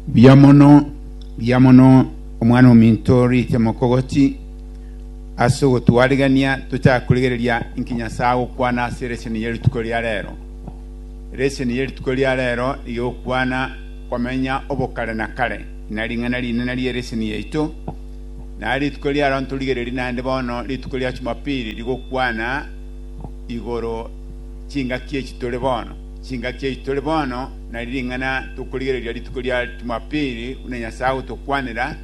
Mbuya mono, mbuya mono omwana ominto orite mokogoti ase ogotwarigania tochake korigereria inki Nyasae agokwana ase eresion eye rituko ria rero. Eresion eye rituko ria rero rigokwana komenya obokare na kare na ring'ana rinene rieresion yaito. Na rituko riaro ntorigererie naende bono rituko ria Jumapili rigokwana igoro chingaki echi tore bono. Chingaki echi tore bono na ring'ana tokorigereria rituko ria Jumapili buna Nyasae agotokwanera,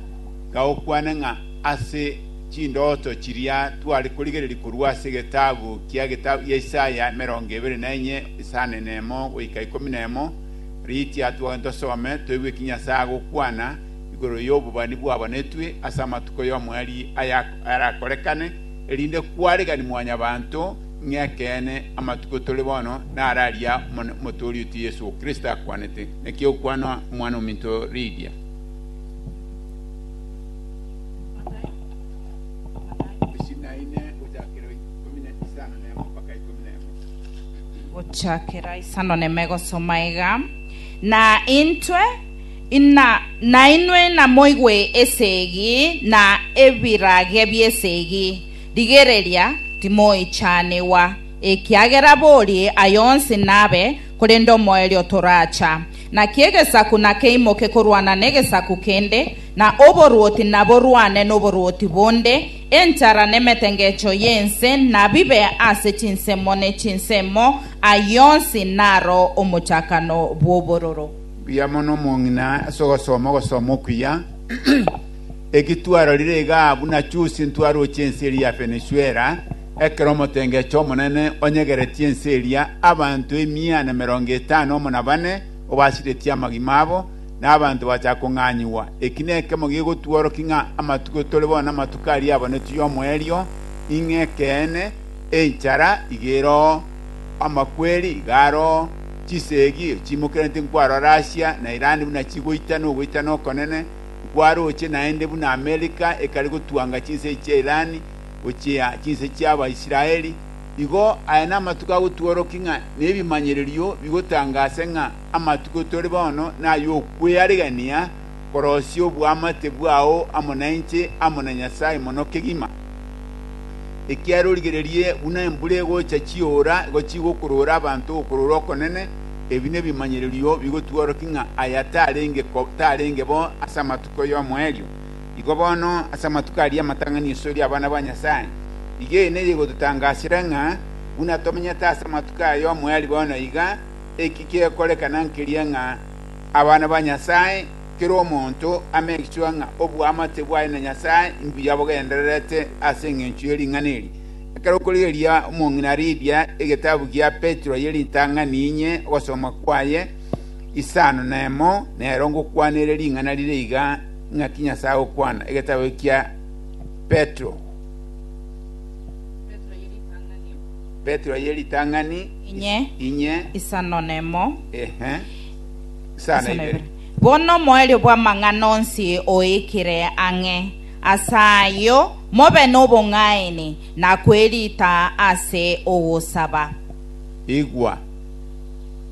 iga okwane ng'a ase chindooto chiria tware korigereria korwa ase egetabu kia geta gia Isaya emerongo ebere na enye isano na emo goika ikomi na emo, riitia twagane tosome toigwe ki Nyasae agokwana igoro y'obobani bwabanetwe ase amatuko y'omoerio aya arakorekane, erinde kwaregani Mwanyabaanto, Ng'ekeene, amatuko tore bono naro aria Omotoori oito Yeso Kristo akwanete, Naki okwana Omwana-o-minto riria? Gochakera isano nemo egosoma iga, Na intwe, nainwe inamoigwe esegi, na ebirage bi'esegi. Rigereria, timoichanigwa, ekiagera borie aye onsi nabe, korende omoerio toracha. Naki egesaku nakeimoke korwana negesaku kende, na oboruoti naborwane noboruoti bonde, enchara nemetengecho y'ense nabibe ase chinsemo ne chinsemo, ayio onsi naro omochakano bw'obororo. Mbuya mono omong'ina ase ogosoma ogosoma okuya. Eki twarorire igaa buna chusi ntwaroche ense eria ya Fenesuela, ekero omotengecho omonene onyegeretie ense eria abanto emia na merongo etano amo na bane obasiretie amagima abo, na abanto bagachaka kong'anyigwa. Eki nekemo gegotworokia ng'a amatuko tore bono namatuko aria abonetwe y'omoerio, ing'e ekeene, enchara iga eroo, amakweri iga aroo, chisegi chiimokereti nkwarora Asia na Irani buna chigoitana ogoitana okonene, nkwarooche naende buna Amerika ekare gotwanga chinsee chia Iran gochia chinsee chiaba Israeli, igo aya namatuko agotworokia ng'a nebimanyererio bigotangaase ng'a amatuko tore bono nay'okwearegania korosia oboamate bwao amo nainche amo na Nyasae mono kegima. Ekiagera origererie buna embura egocha chiora igo chigokorora abanto okorora okonene, Ebi nebimanyererio bigotworokia ng'a aya tarenge ko tarenge bo ase amatuko y'omoerio, igo bono ase amatuko aria amatang'ani iso eri abana ba Nyasae. Igei neye igototangasera ng'a buna tomenyete ase amatuko aya y'omoerio bono iga, eki kekorekana nkeria ng'a abana ba Nyasae, kera omonto ame gesuha ng'a oboamate bwaye na Nyasae imbuya bogendererete ase engencho ye ring'ana eri. Ekero okorigereria omong'ina Lidia egetabu gia Petero ye ritang'ani inye ogosoma kwaye, isano nemo nero ngokwana ere ring'ana rire iga, Ing'aki Nyasae agokwana, egetabu ekia Petero. Petro ye ritang'ani Petero ye ritang'ani Inye. inye isano nemo ehe isano isano ibere. ibere. Bono omoerio bw'amang'ana onsi oikire ang'e, Ase ayio, mobe nobong'aini na kwerita ase ogosaba. Igwa!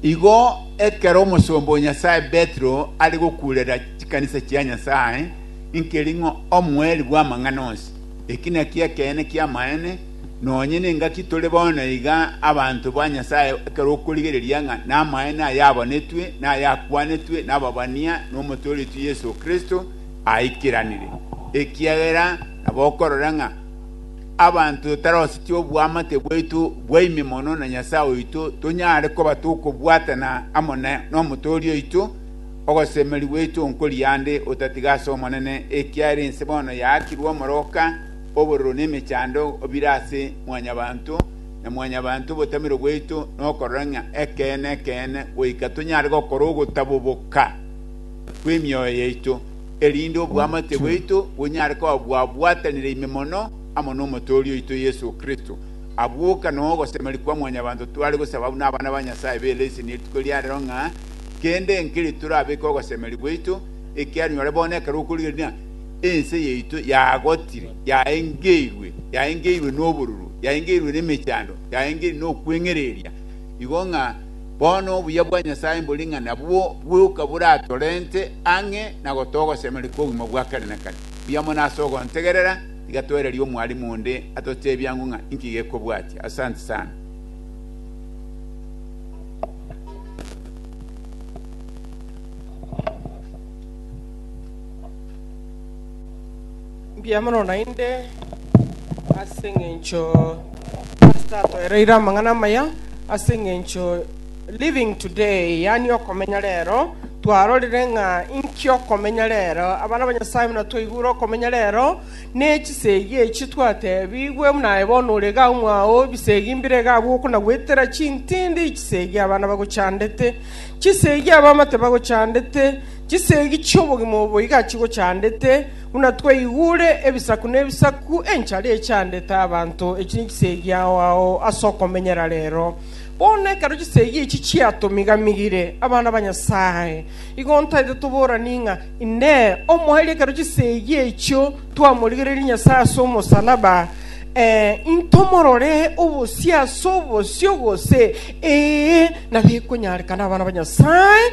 Igo ekero omosomba o Nyasae Petero are gokuurera chikanisa chia Nyasae, nkeri ng'a omoeri bw'amang'ana onsi, eki nakio ekeene ki'amaene, nonye nengaki tore bono iga abanto ba Nyasae ekero okorigereria ng'a namaene ayabonetwe na ayakwanetwe nababania nomotooretwe Yeso Kristo, aikeranire, ekiagera nabo okorora ng'a abanto totarosetie oboamate bwaito bwa ime mono na Nyasae oito, tonyare koba tokobwatana amo nomotoori oito, ogosemeria gwaito nkoria ande otatiga ase Omonene, ekiagera ense bono yaakirwe omoroka, obororo na emechando bire ase mwanyabanto, na mwanyabanto obotamero bwaito nokorora ng'a ekeene ekeene, goika tonyare gokora ogotaboboka. bw'emioyo yaito, erinde obwamate bwaito bonyare koba bwabwatanire ime mono amo n'Omotooria oito Yeso Kristo. Abwo oka noo ogosemeri kwa mwanyabanto tware gosaba buna abana ba Nyasae b'eleseni ye rituko ria rero ng'a kende enkeri torabeke ogosemeri gwaito ekiara nyore bono ekero okorigereria ense yaito yagotire, yaengeirwe, yaengeirwe n'obororo, yaengeirwe nemechando, yaengeirwe nokweng'ereria, igo ng'a bono obuya bwa Nyasae mbore ng'a nabwo bw'euka buratorente ang'e na gotogosemeria kw'obogima bwa kare na kare. Buya mono ase ogontegerera, tiga toererie omwarimu onde atoteebie ang'u ng'a inki gekobwatia. Asante sana. Mbuya mono naende ase eng'encho Pastor atoereire amang'ana amaya ase eng'encho living today yaani okomenya rero twarorire ng'a inki okomenya rero abana ba Nyasaye buna twaigure okomenya rero ne chisegi echi twatebigwe buna aye bono ore iga mwao ebisegi mbire iga abwo okonagwetera chintindi chisegi abana bagochandete chisegi abamate bagochandete chisegi chi'obogima obo iga chigochandete Buna twaigure ebisaku nebisaku enchara echaandete abanto, echi nichisegi ao ao ase okomenyera reero. Bono ekero chisegi echi chiatomigamigire, abana ba Nyasae, igo ntaete toboranie ng'a, Inee, omoerio ekero chisegi echio twamorigereiri Nyasae ase omosalaba, ee, intomorore obosio ase obosio, gose, ee, nabikonyareka nabana ba Nyasae?